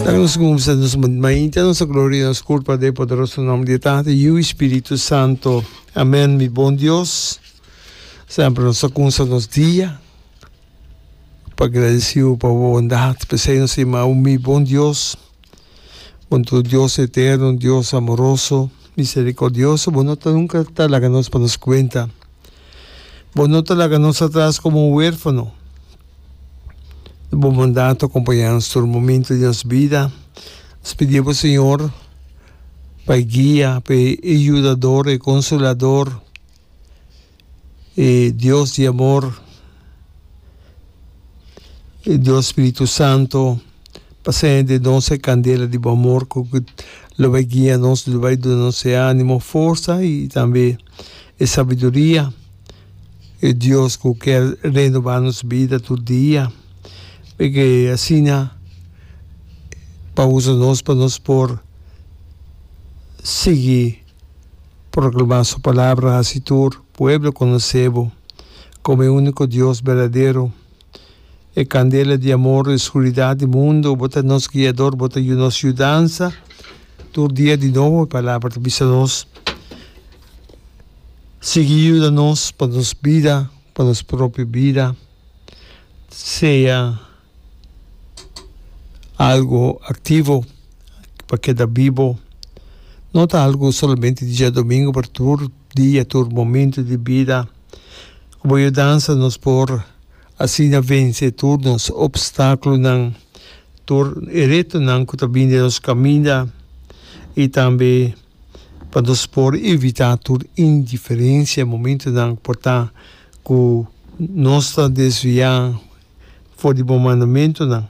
Laga nos kumsa nos mainta nos a gloria nos kurpa den e poderoso nom di e Tata e Yu e Spiritu Santo. Amen mi bon Dios. Semper nos a kumsa nos dia pa gradesiu pa bo bondat. P'esei nos a yamau mi bon Dios. Bo ta un Dios eterno, un Dios amoroso, miserikordioso. Bo no ta nunka ta laga nos pa nos kuenta. Bo no ta laga nos atras komo un werfano. di bo bondat ta acompaña nos tur momento di nos bida nos pidié bo Señor pa e guia pa e yudador e consolador e Dios di amor e Dios spiritu santo pa ser den nos e candela di bo amor cu lo bay guia nos lo bay duna nos e animo forsa y tambe e sabiduria. E Dios cu kier renoba nos bida tur dia, p'e asina pa usa nos pa nos por sigui proclama su palabra, haci tur pueblo conoce bo como e unico Dios berdadero, e candela di amor e scuridad di mundo. Bo ta nos guiador, bo ta nos yudansa tur dia di nobo. E palabra ta bisa nos sigui yuda nos pa nos bida, pa nos propio bida, sea algo activo pa keda bibo, no ta algo solamente diadomingo pero tur dia, tur momento di bida, ku bo yudansa nos por asina vense tur nos opstakulonan, tur e retonan ku ta bini den nos kaminda i tambe. pa nos por evitá tur indiferensia momentunan ku por ta ku nos ta desviá for di bo mandamentunan.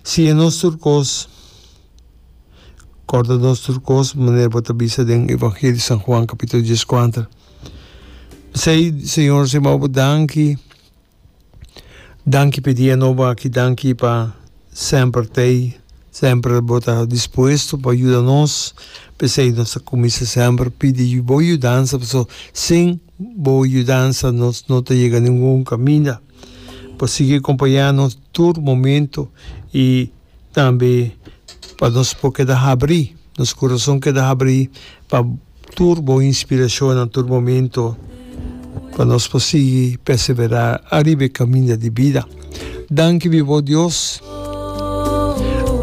Siña nos tur kos, kòrda nos tur kos, manera bo ta bisa den Evangelio di San Juan kapitulo dies kuater. P'esei, Señor, nos a yama Bo danki. Danki p'e dia nobo aki, danki pa semper t'ei, semper bo ta dispuesto pa yuda nos, p'esei nos ta cuminsa semper pidi bo yudansa pasobra sin bo yudansa nos no ta yega ningun caminda. Bo sigui a compaña nos tur momento y tambe pa nos por keda habri, nos corazon keda habri pa. Tur bon inspirashonnan, tur momentu pa nos por sigui perseverá ariba e kaminda di bida. Danki biba bo Dios.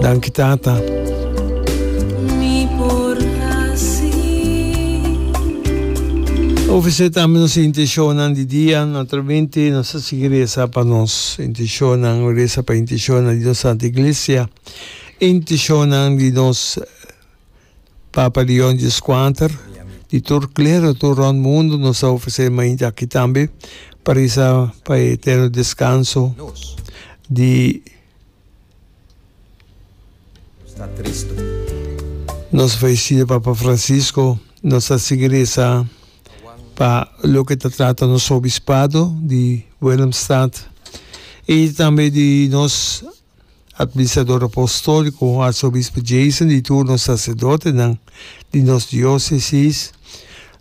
Danki Tata. Ofresé tambe nos intenshonnan di dia. Naturalmente nos ta sigui resa pa nos intenshonnan, resa pa intenshonnan di nos Santa Iglesia, intenshonnan di nos. Papa Leon xvi scuater, Di tur clero tur rond mundo nos a ofrece mainti aki tambe pa reza pa e eterno descanso di nos fallecido Papa Francisco. Nos a sigui reza pa loke ta trata nos obispado di Willemstad y tambe di nos Administrador Apostolico, Arsobispo Jason di tur nos Sacerdotenan di nos Diocesis,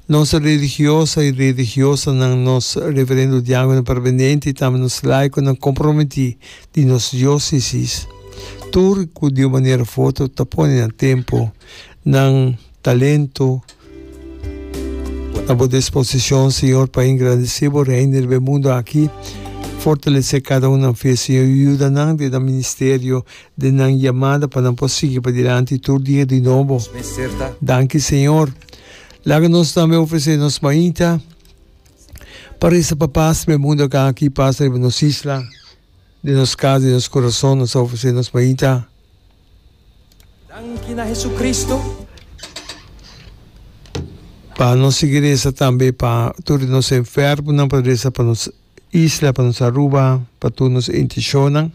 nos Religiosa y Religiosanan, nos Reverendo Diacono Permanente y tambe nos Laiconan Comprometi di nos Diocesis, tur cu di un manera foto ta pone na tempo nan. Talento na bo disposicion, Señor, pa engrandece bo Reino riba e mundo aki. Fortalece cada un nan fe, Señor, y yuda nan den nan ministerio, den nan yamada pa nan por sigui padilanti tur dia di nobo. Danki, Señor. Laga nos tambe ofrece nos mainta pa reza pa paz riba e mundo aki, paz riba nos isla, den nos cas, den nos corazon. Nos ta ofrece nos mainta. Danki na Hesukristu. Pa nos sigui resa tambe pa tur di nos enfermunan pa resa pa nos isla pa nos Aruba pa tur nos intishonnan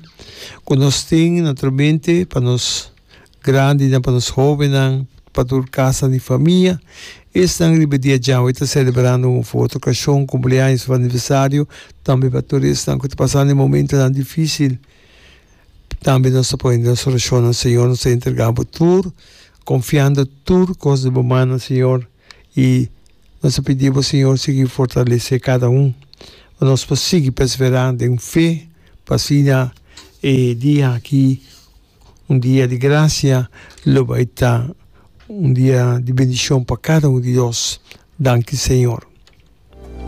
ku nos tin naturalmente pa nos grandinan pa nos hobennan pa tur kasanan di famia esnan riba dia djawe ta selebrando un foto okashon kumpleaños aniversario tambe pa tur esnan ku ta pasando e momentonan difisil. Tambe nos ta pone nos orashon na Señor, nos ta entrega Bo tur, confiando tur cos di Bo mana, Señor, y nos ta pidi Bo, Señor, sigui fortalece cada un, pa nos por sigui persevera den fe, pa asina e dia aki, un dia di gracia, lo bay ta un dia di bendicion pa cada un di nos. Danki, Señor.